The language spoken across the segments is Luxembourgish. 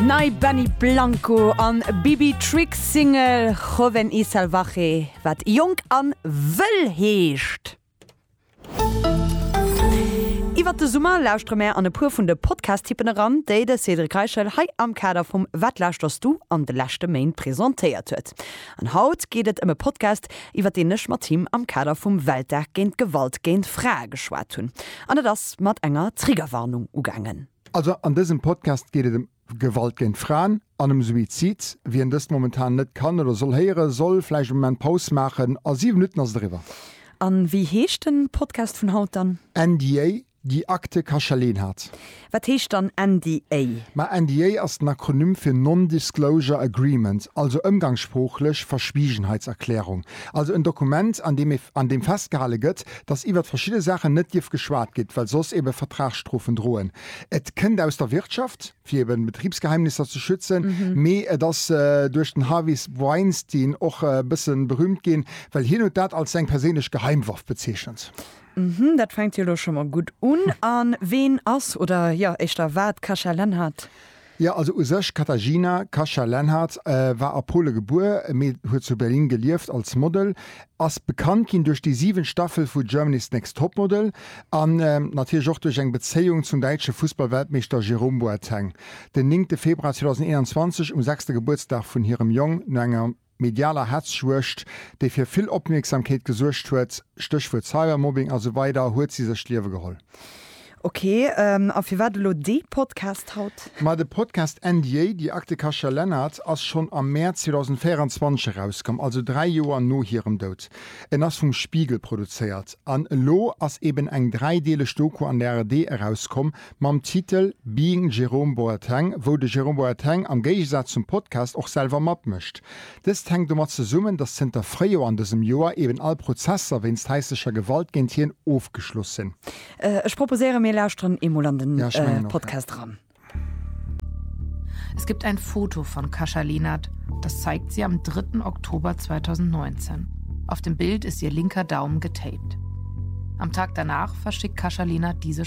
Nei Benny Blanco an Bibi Tricks Single Joven y Salvaje, wat jonk an wëll heescht. Iwwert de Summer lauschtere mär an e puer vun de Podcast-Tippen eran, déi de Cédric Reichel hei am Kader vum Wat lauschters du an de leschte Méint presentéiert huet. An haut geet et ëm e Podcast, iwwer deen ech mat him am Kader vum Weltdag géint Gewalt géint Frae geschwat hunn. An et ass mat enger Triggerwarnung ugaangen. Also an dësem Podcast geet et ëm Gewalt géint Fraen an ëm Suizid. Wien dëst momentan net kann oder soll héieren, soll vläicht e Moment Paus maachen. A siwe Minutten ass et eriwwer. A wéi heescht den Podcast vun haut dann? NDA, Déi Akte Kacheleen hat. Wat heescht dann NDA? Ma NDA ass den Akronym fir Non-Disclosure Agreement, also ëmgangssproochlech Verschwiegenheitserklärung. Also en Dokument, an deem an deem festgehale gëtt, datt iwwert verschidde Saachen net dierf geschwat gitt, well soss ebe Vertragsstrofen droen. Et kënnt aus der Wirtschaft, fir eben Betribsgeheimnisser ze schützen, mee et ass duerch den Harvey Weinstein och e bësse berüümt ginn, well hien huet dat als seng perséinlech Geheimwaff bezeechent. Mhmm, dat fänkt jo elo scho mol gutt un. A ween ass, oder jo éischter wat, d'Kasia Lenhardt? Jo, also u sech, Katarzyna Kasia Lenhardt war a Pole gebuer, mee huet zu Berlin gelieft, als Model, ass bekannt ginn duerch déi 7 Staffel vu Germany's Next Topmodel an natierlech och duerch eng Bezéiung zum däitsche Fussballweltmeeschter Jerome Boateng. Den néngte Februar 2021, um sechste Gebuertsdag vun hirem Jong, no enger medialer Hetzjuegd, déi fir vill Opmierksamkeet gesuergt huet, Stéchwuert Cybermobbing a sou weider, huet si sech d'Liewe geholl. Ok, a firwat elo dee Podcast haut? Ma de Podcast NDA, Die Akte Kasia Lennart, ass schonn am Mäerz 2024 erauskomm, also dräi Joer no hirem Doud. En ass vum Spiegel produzéiert an elo ass eben eng dräideeleg Doku an der ARD erauskomm, mam Titel Being Jerome Boateng, wou de Jerome Boateng am Géigesaz zum Podcast och selwer matmécht. Dëst hänkt domat zesummen, datt zënter Fréijoer an dësem Joer eben all Prozesser wéinst haislecher Gewalt géint hien ofgeschloss sinn. Ech proposéieren, mir lauschteren eemol an den Podcast eran. Es gibt ein Foto von Kasia Lenert, das zeigt sie am 3. Oktober 2019. Auf dem Bild ist ihr linker Daumen getaped. Am Tag danach verschickt Kasia Lenert diese.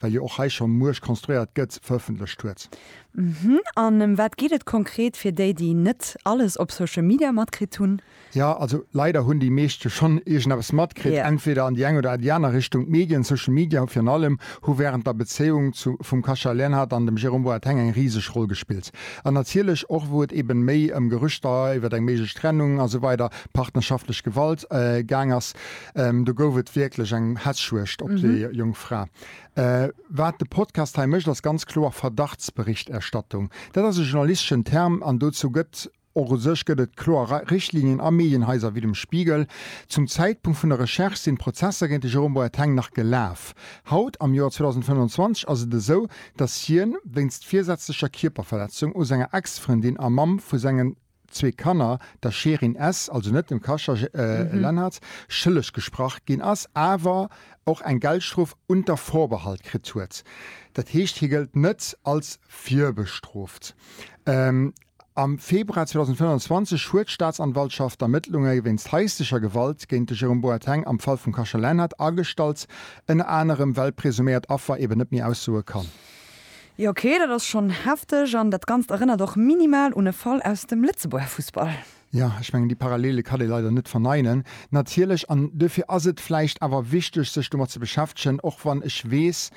well jo och hei schonn muech konstruéiert gëtt, verëffentlecht huet. Hm, an ëm wat geet et konkret fir déi, déi net alles op Social Media matkritt hunn? Jo, also leider hunn déi meescht jo schonn iergendeppes matkritt, entweder an déi eng oder déi aner Richtung. D'Medien, Social Media virun allem, hu wärend der Bezéiung zu vum Cachat Leonhard an dem Jérôme Boateng eng riseg Roll gespillt. An natierlech och wou et eben méi ëm Gerüchter iwwer eng méiglech Trennung a sou weider, partnerschaftlech Gewalt, gaang ass, Do gouf et wierklech eng Hässjuegd op déi jonk Fra. Wat de Podcast hei mécht, ass ganz kloer Verdachtsberichterstattung. Dat ass e journalisteschen Term an dozou gëtt och u sech gëtt et kloer Richtlinien a Medienhaiser wéi dem Spiegel. Zum Zäitpunkt vun der Recherche sinn d'Prozesser géint de Jérôme Boateng nach gelaf. Haut, am Joer 2025, ass et esou, datt hien wéinst virsätzlecher Kierperverletzung u senger Ex-Frëndin a Mamm vu sengen zwee Kanner, der Shirin S. also net dem Kascha Lennertz, schëlleg gesprach ginn ass, awer och eng Geldstrof unter Vorbehalt kritt huet. Dat heescht, hie gëllt net als virbestrooft. Am Februar 2025 huet d'Staatsanwaltschaft d'Ermëttlunge wéinst haislecher Gewalt géint de Jérôme Boateng am Fall vum Kascha Lenhart agestallt, ënner anerem well d'presuméiert Affer eben net méi aussoe kann. Jo ok, dat ass schonn hefteg an dat Ganzt erënnert och minimal un e Fall aus dem Lëtzebuerger Fussball. Jo, ech mengen déi Parallele kann ee leider net verneinen, natierlech. An duerfir ass et vläicht awer wichteg sech domat ze beschäftegen, och wann ech weess,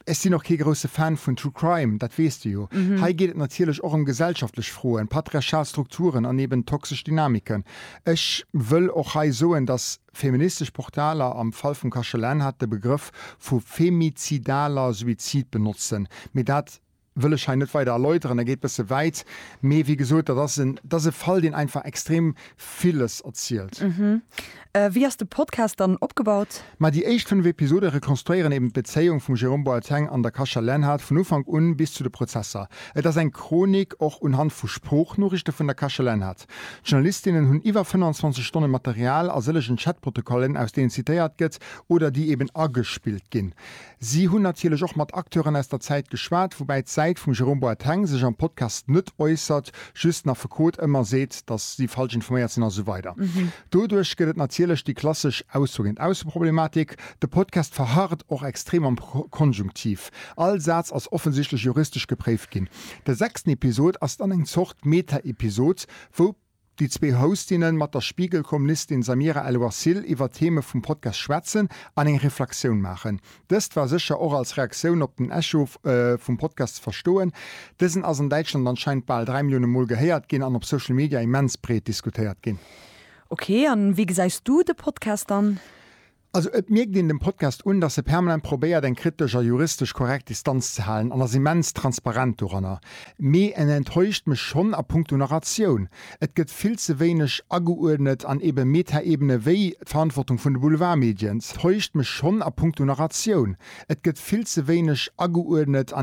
ech sinn och kee grousse Fan vun True Crime, dat weess de jo. Hei geet et natierlech och ëm gesellschaftlech Froen, patriarchal Strukturen an eben toxesch Dynamiken. Ech wëll och hei soen, datt. Feministesch Portaler, am Fall vum Kachelin hat, de Begrëff vu femizidaler Suizid benotzen, mee dat wëll ech hei net weider erläuteren, dat geet bësse wäit. Mee wéi gesot, dat ass en, dat ass e Fall, deen einfach extrem villes erzielt. Wéi ass de Podcast dann opgebaut? Ma déi éischt fënnef Episode rekonstruéieren eben d'Bezéiung vum Jérôme Boateng an der Kacha Lenhart vun Ufank un bis zu de Prozesser. Et ass eng Chronik och unhand vu Sproochnoriichte vun der Kacha Lenhart. Chat. D'Journalistinnen hunn iwwer 25 Stonne Material a sëllegen Chatprotokollen, aus deenen zitéiert gëtt oder déi eben agespillt ginn. Si hunn natierlech och mat Acteuren aus der Zäit geschwat, woubäi d'Säit vum Jérôme Boateng sech am Podcast net äussert, just den Affekot ëmmer seet, datt si falsch informéiert sinn a sou weider. Doduerch gëtt et natierlech déi klassesch Ausso géint Ausso-Problematik. De Podcast verharrt och extrem am Konjunktiv. All Saz ass offensichtlech juristesch gepréift ginn. De sechsten Episod ass dann eng Zort. d'Meta-Episod, wou déi zwee Hostinne mat der Spiegel-Kolumnistin Samira El-Wasil iwwer d'Theme vum Podcast schwätzen an eng Reflexioun maachen. Dëst war sécher och als Reaktioun op den Echo vum Podcast ze verstoen. Dësen ass an Däitschland anscheinend bal 3 Millioune Mol gehéiert ginn an op Social Media immens breet diskutéiert ginn. Ok, an wéi gesäis du de Podcast dann? Also et mierkt een dem Podcast un, dass e permanent probéiert eng kritesch a juristesch korrekt Distanz ze halen an ass immens transparent doranner. Mee en enttäuscht mech schonn a punkto Narratioun. Et gëtt vill ze wéineg ageuerdnet an eben Metaebene wéi d'Verantwortung vun de Boulevardmedien täuscht mech schonn a punkto Narratioun. Et gëtt vill ze wéineg ageuerdnet an.